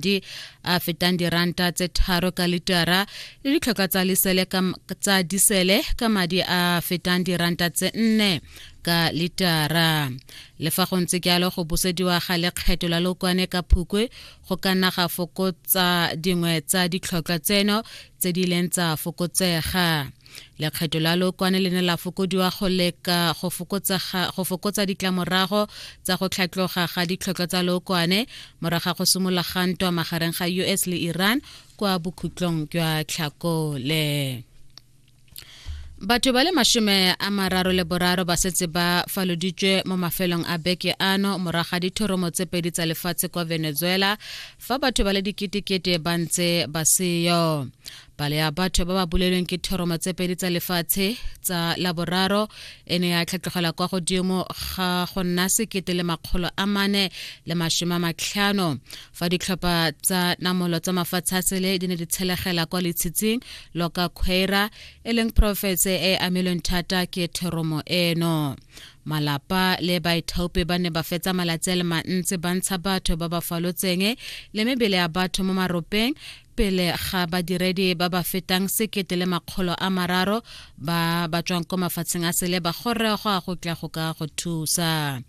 madi a fetang diranta tse tharo ka litara le ditlhoka tsa lisele tsa disele ka madi a fetang diranta tse nne ka litara le fa go ntse jalo go busediwa ga lekgetho la lokwane ka phukwe go ka nna ga fokotsa dingwe tsa ditlhotlhwa tseno tse di leng tsa fokotsega lekgetho la lokwane le ne la fokodiwa go leka go fokotsa ditlamorago tsa go tlhatloga ga ditlhotlhwa tsa lokwane moraga go simolola ga ntwa magareng ga us le iran kwa bokhutlong jwa tlhakole batho ba le mashome a mararo le boraro ba setse ba faloditswe mo mafelong a beke ano moraga dithoromo tse pedi tsa lefatshe kwa venezuela fa batho ba le diketekete ba ntse ba seyo palo ya batho ba ba bolelweng ke thoroma tse pedi tsa lefatshe tsa laboraro e ne ya tlhatlogela kwa godimo ga go nna sekete le makgolo a mane le mashome a matlhano fa ditlhopha tsa namolo tsa mafatshe a sele di ne di tshelegela kwa letshitsing loka quaira e leng porofense e amilweng thata ke thoromo eno malapa le baithaopi ba ne ba fetsa malatsi a le mantsi ba ntsha batho ba ba falotseng le mebele ya batho mo maropeng pele ga badiredi ba ba fetang sekete le makgolo a mararo ba ba tswang ko mafatsheng a sele ba gorregwa go tla go ka go thusa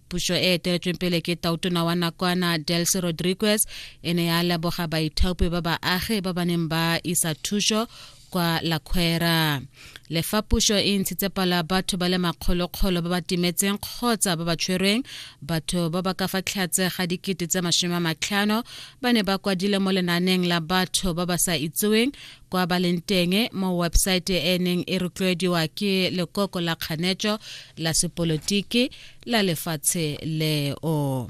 puso e eteletsweng pele ke tautona wa nakwana delcy rodriguez e ne ya leboga baithaopi ba baagi ba ba neng ba isa thuso kwa la khwera le fa puso e ntshitse palo ya batho ba le makgolokgolo ba ba timetseng kgotsa ba ba tshwerweng batho ba ba ka fa tlhatse ga dikete tse masome a matlhano ba ne ba kwadile mo lenaneng la batho ba ba sa itseweng kwa ba leng teng mo website e neng e rotloediwa ke lekoko la kganetso la sepolotiki la lefatshe leo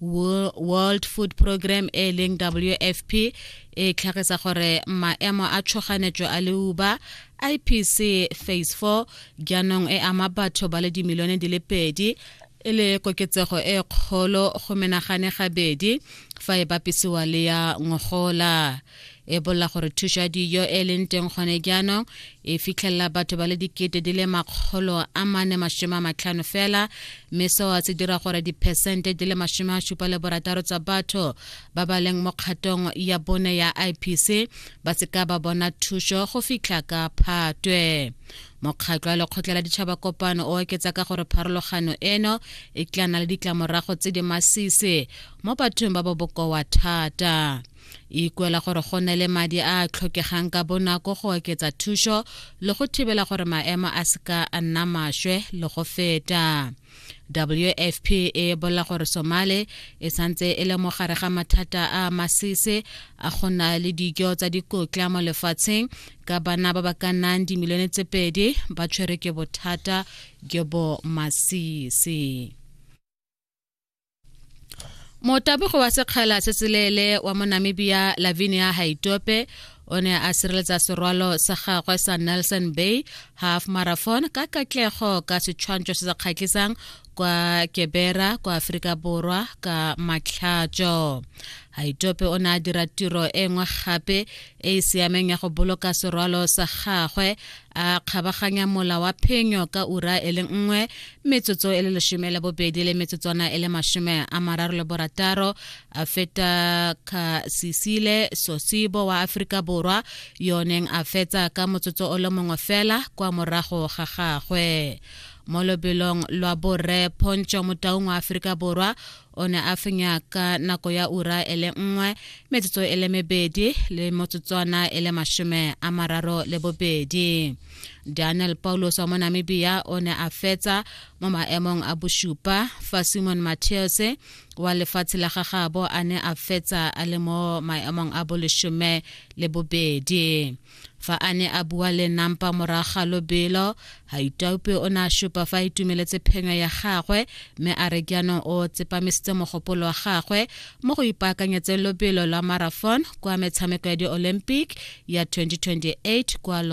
world food program e leng wfp e tlhagisa gore maemo a tshoganetso a leuba ipc phase 4 jaanong e ama batho ba le dimilione di le pedi e le koketsego e kgolo go menagane gabedi fa e bapisiwa le ya ngogola e bolela gore thuso ya dijo e leng teng gone jaanong e fitlhelela batho ba le dikete di le makgolo a mane masome a matlhano fela mme seo se dira gore diphesente di le masome a supa le borataro tsa batho ba ba leng mo kgatong ya bone ya ipc ba seka ba bona thuso go fitlha ka phatwe mokgatlho wa lekgotla la ditšhaba kopano o oketsa ka gore pharologano eno e tla na le ditlamorago tse di masisi mo bathong ba ba bokoa thata e ikuela gore go ne le madi a a tlhokegang ka bonako go oketsa thušo le go thibela gore maemo a seka a nna maswe le go feta wfp e bolela gore somale e santse e le mogare ga mathata a masese a go na le dijo tsa dikotla mo lefatsheng ka bana ba ba ka nnang dimilione tse pedi ba tshwere ke bothata jo bo masese motabogo wa sekgala se seleele wa monamibia lavinia haitope o ne a sireletsa serwalo sa gagwe sa nelson bay half marathon ka katlego ka setshwantsho se se kgatlhisang kwa kebera kwa aforika borwa ka matlhatso haitope o ne a dira tiro e nngwe gape e e siameng ya go boloka serwalo sa gagwe a kgabaganya mola wa phenyo ka ura e le nngwe metsotso e le lesome le bobedi le metsotswana e le masome a mararo le borataro a feta ka sisile sosibo wa aforika borwa yo neng a fetsa ka motsotso o le mongwe fela kwa morago ga gagwe mo lobelong lwa borre pontsho motaung wa aforika borwa o ne a fenya ka nako ya ura e le nngwe metsotso e le mebedi le motsotswana e le mashome a mararo le bobedi daniel paulos wa mo namibia o ne a fetsa mo maemong a bosupa fa simon matteos wa lefatshe la gagabo a ne a fetsa a le mo maemong a boleshome le bobedi Fa a ne a bua le Nampa morago ga lobelo, Haitaupe o ne a supa fa a itumeletse phenyo ya gagwe mme a re jaanong o tsepamisitse mogopolo wa gagwe mo go ipaakanyetseng lobelo lwa marathon kwa metshameko ya di-Olympic ya 2028 kwa Los